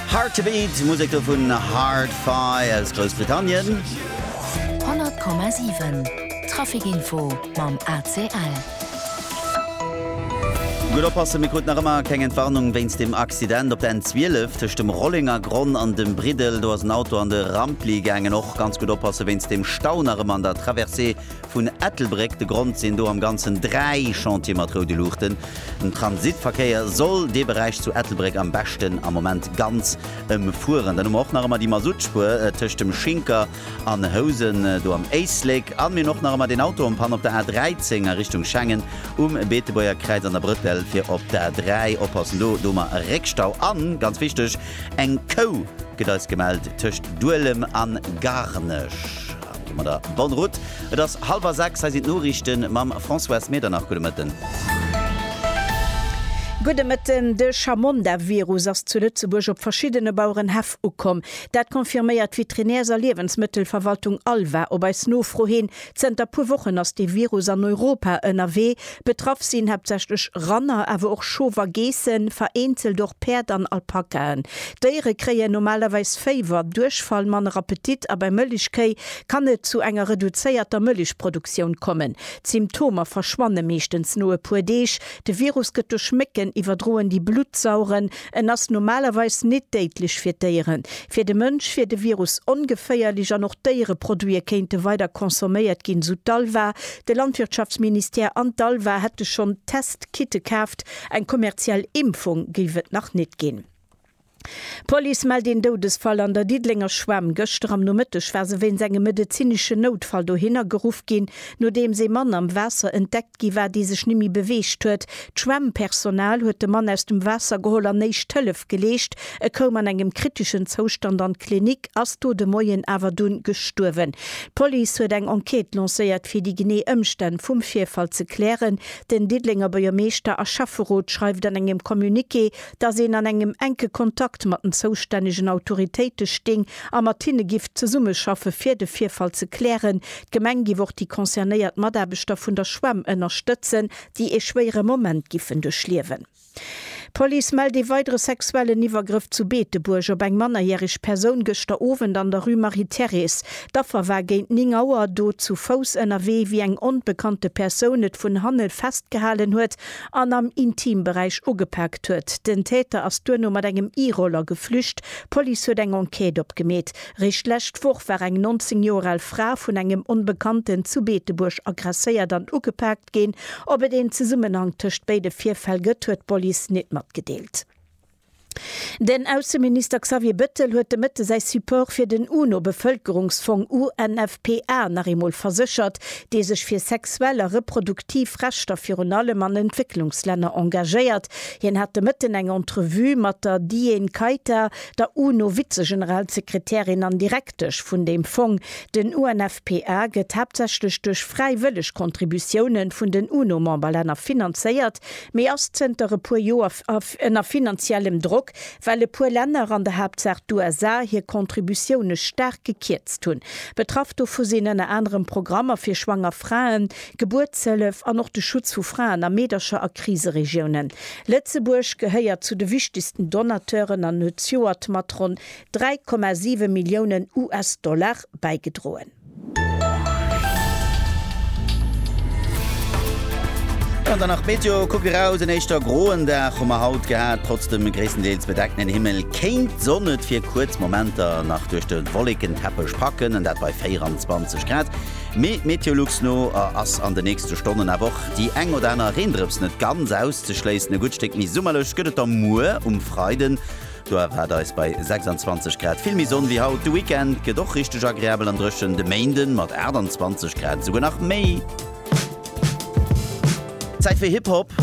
Hard to Beat, Musek do vun Hard-Fi aus Groussbritannien. 100,7 Traficinfo mam ACL. Gutt oppassen, mir kruten nach ëmmer keng Entwarnung wéinst dem Accident op der N12 tëscht dem Rollengergronn an dem Briddel. Do ass en Auto an de Rampli gaangen. Och ganz gutt oppasse wéinst dem Stau nach ëmmer an der Traversée Vun Ettelbréck de Grond sinn do am Ganzen dräi Chantiere mat roude Luuchten. Den Transitverkéier soll dee Beräich zu Ettelbréck am beschten am Moment ganz ëmfueren. Dann hu mer och nach ëmmer déi Masuttspuer tëscht dem Schinker an Housen do am Éislek. An mir hunn och nach ëmmer deen Auto en panne op der A 13 a Richtung Schengen, um Beetebuerger Kräiz an der Brëttel fir op d'A 3. Oppassen do, do hu mer e Réckstau. An, ganz wichteg, eng Kou gëtt eis gemellt tëscht Duelem an Garnech. Ginn mer der bonne route. Et ass halwer 6, hei sinn d'Noriichten mam Françoise Medernach. Gudde Mëtten. Gudde Mëtten. De Chamonda-Virus ass zu Lëtzebuerg op verschiddene Bauerenhäff ukomm. Dat confirméiert d'Veterinärs a Liewensmëttelverwaltung Alva op eis Nofro hin. Zënter puer Wochen ass dee Virus an Europa ënnerwee. Betraff sinn haaptsächlech Ranner, awer och Schof a Geessen, vereenzelt och Päerd an Alpakaen. D'Déiere kréien normalerweis Féiwer, Duerchfall, manner Appetit a bei Mëllechkéi kann et zu enger reduzéierter Mëllechproduktioun kommen. D'Symptomer verschwanne meeschtens no e puer Deeg. De Virus gëtt duerch Mécken iwwerdroen, déi Blutt saugen. En ass normalerweis nit déidlech fir d'Déieren. Fir de Mënsch wier de Virus ongeféierlech an och Déiereproduite kéinte weider consomméiert ginn, sou d'Alva, De Landwirtschaftsministère an d'ALVA hätte schonn Test-Kitte kaaft, eng kommerziell Impfung géif et nach net ginn. D'Police mellt een Doudesfall an der Diddelenger Schwämm. Gëschter am Nomëtteg war se wéinst engem medezinesche Noutfall dohinner geruff ginn, nodeems ee Mann am Waasser entdeckt gi war, dee sech nemme beweegt huet. D'Schwämmpersonal huet de Mann aus dem Waasser geholl an Éischt Hëllef geleescht. E koum an engem kriteschen Zoustand an d'Klinik, ass do de Moien awer dunn gestuerwen. D'Police huet eng Enquête lancéiert, fir déi genee Ëmstänn vum Virfall ze klären. Den Diddelenger Buergermeeschter a Schäfferot schreift an engem Communiqué, dass een an engem enke Kontakt mat den zoustännegen Autoritéite sting a mat hinne giff zesummeschaffe fir de Virfall ze klären. D'Gemeng giff och déi concernéiert Mataarbechter vun der Schwämm ënnerstëtzen, déi ee schwéiere Moment giffen duerchliewen. D'Police mellt ee weidere sexuellen Iwwergrëff zu Beetebuerg op eng mannerjäreg Persoun gëschter Owend an der Rue Marie-Thérèse. D'Affer war géint 9 Auer do zu Fouss ënnerwee, wéi eng onbekannte Persoun et vun hanne festgehalen huet an am Intimberäich ugepaakt huet. Den Täter ass duerno mat engem E-Roller geflücht. D'Police huet eng Enquête opgemeet. Réischt d'lescht Woch war eng 19 Joer al Fra vun engem Onbekannten zu Beetebuerg agresséiert an ugepaakt. ginn. Ob et een Zesummenhank tëscht béide Virfäll gëtt, huet d'Police nit matgedeelt. Den Ausseminister Xavier Bettel huet de Mëtte säi Support fir den UNO-Bevëlkerungsfong UNFPA nach eemol verséchert, dee sech fir sexuell a reproduktiv Rechter virun allem an Entwécklungslänner engagéiert. Hien hat de Mëtten eng Entrevue mat der Diane Kaita, der UNO-Vizegeneralsekretärin an direk. praktesch vun deem Fong. Den UNFPA gëtt haaptsächlech duerch fräiwëlleg Contributiounen vun den UNO-Memberlänner finanzéiert, mee ass zënter e puer Joer ënner finanziellem Drock, well e puer Länner, an der Haaptsaach d'USA, hir Contributioune staark gekierzt hunn. Betraff dovu sinn ënner anerem Programmer fir schwanger Fraen, Gebuertshëllef an och de Schutz vu Fraen a Meedercher a Kriseregiounen. Lëtzebuerg gehéiert zu de wichtegsten Donateuren an huet d'Joert mat ronn 3,7 Milliounen US-Dollar bäigedroen. An dann nach d'Meteo, Kuckt eraus, en éischter groen Dag hu mer haut gehat, trotz dem gréisstendeels bedeckten Himmel kéint d'Sonn et fir kuerz Momenter nach duerch de Wollekenteppech packen, an dat bei 24 Grad. Mee Meteolux no ass an de nächste Stonnen awer och déi eng oder aner Reendrëps net ganz auszeschléissen. E gutt Stéck méi summerlech gëtt et da muer um Freiden. Do erwaart eis bei 26 Grad vill méi Sonn wéi haut. De Weekend gëtt och richteg agreabel an dréchen, de Méinden mat 28 Grad esouguer nach méi Zäit fir Hip-Hop.